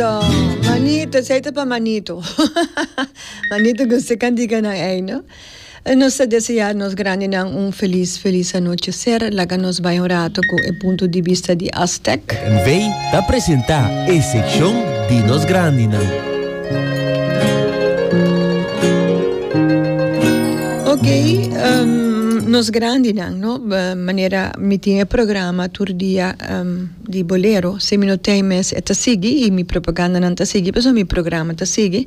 Ta manito esei ta pa manito manito gusta e cantica nan ei no nos ta desea nos grandi nan un feliz feliz anochecer laga nos bai un rato cu e punto di bista di Aztec. NV ta presenta e seccion di nos grandi nan. Ok nos grandi nan no manera mi tin e programa tur dia. di bolero si mi no tin mes e ta sigui y mi propagandanan ta sigui pasobra mi programa ta sigui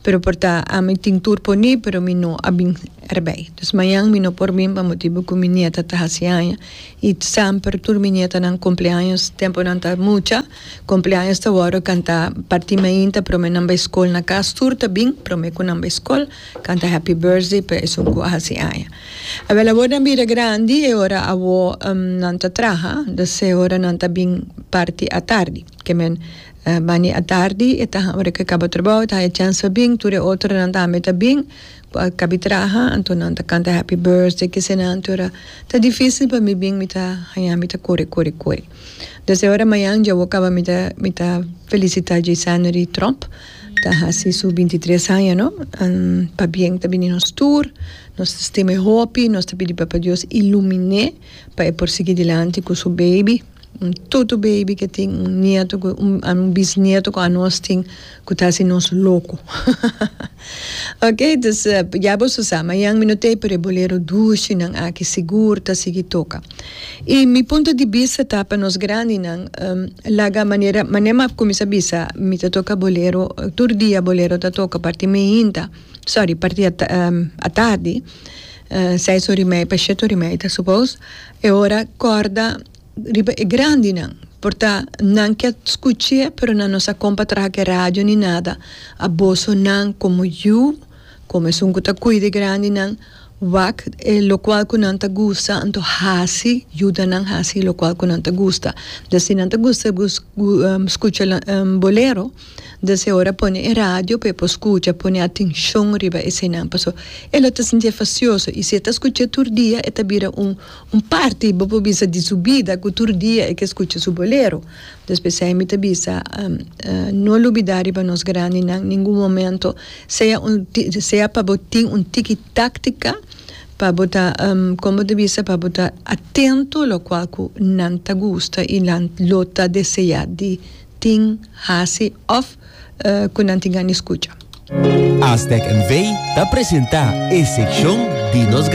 pero por ta ami tin tur por ni pero mi no a bin erbey entonces mañan mi no por bin pa motibu cu mi nieta ta haci aña y semper tur mi nietanan cumpleaños temponan ta mucha cumpleaños ta worde canta parti mainta prome nan bay school na cas tur ta bin prome cu nan bay school. Canta happy birthday pa esun cu a haci aña. Abel awor nan bira grandi e ora awo nan ta traha, dus e ora nan ta bin parti atardi. Ke men bani atardi e ta ora ke caba trabao e ta haya chance pa bin, tur e otronan tambe ta bin cu a cabi traha, anto nan ta canta happy birthday kesenan te ora ta dificil pa mi bin mi ta haya mi ta cori cori cori. Dus e ora mayan dje awo caba mi ta mi ta felicita Jaysanery Tromp. Ta hasi su binti tres aña no, an pabien ta bini nos tur, nos ta stim'é hopi, nos ta pidi Papa Dios ilumin'é pa e por sigui dilanti ku su baby, un tutu baby ku e tin un nieto ku un bisnieto ku anos tin ku ta hasi nos loko hahaha ok dus ya boso sa mañan mi no tei pero e bolero dushi nan aki sigur ta sigui toka. I mi punto di bista ta pa nos grandinan laga manera mane m'a kuminsá bisa mi ta toka bolero tur dia bolero ta toka parti mihinta sorry parti atardi seis ora i media pa shete ora i media ta supos e ora kòrda riba e grandinan por ta nan ke skuch'é pero nan no sa kon pa traha ke radio ni nada a boso nan komo yu Como esun cu ta cuida e grandinan, wak e locual cu nan ta gusta, anto haci, yuda nan haci locual cu nan ta gusta. Dor si nan ta gusta scucha bolero, dor si e ora pone e radio pa e por scucha, pone atencion riba esenan, pasobra e lo ta sinti e facioso, y si e ta scucha tur dia, e ta bira un, un parti, bo por bisa, di su bida, cu tur dia e ke scucha su bolero. Despues esei mi ta bisa, No lubidá riba nos grandinan ningun momento, sea un sea pa bo tin un tiki táktika pa bo ta, kon bo ta bisa, pa bo ta atento lokual ku nan ta gusta i nan lo ta deseá di tin, hasi òf ku nan tin gana di skucha. Aztec NV. ta presentá e sekshon di nos.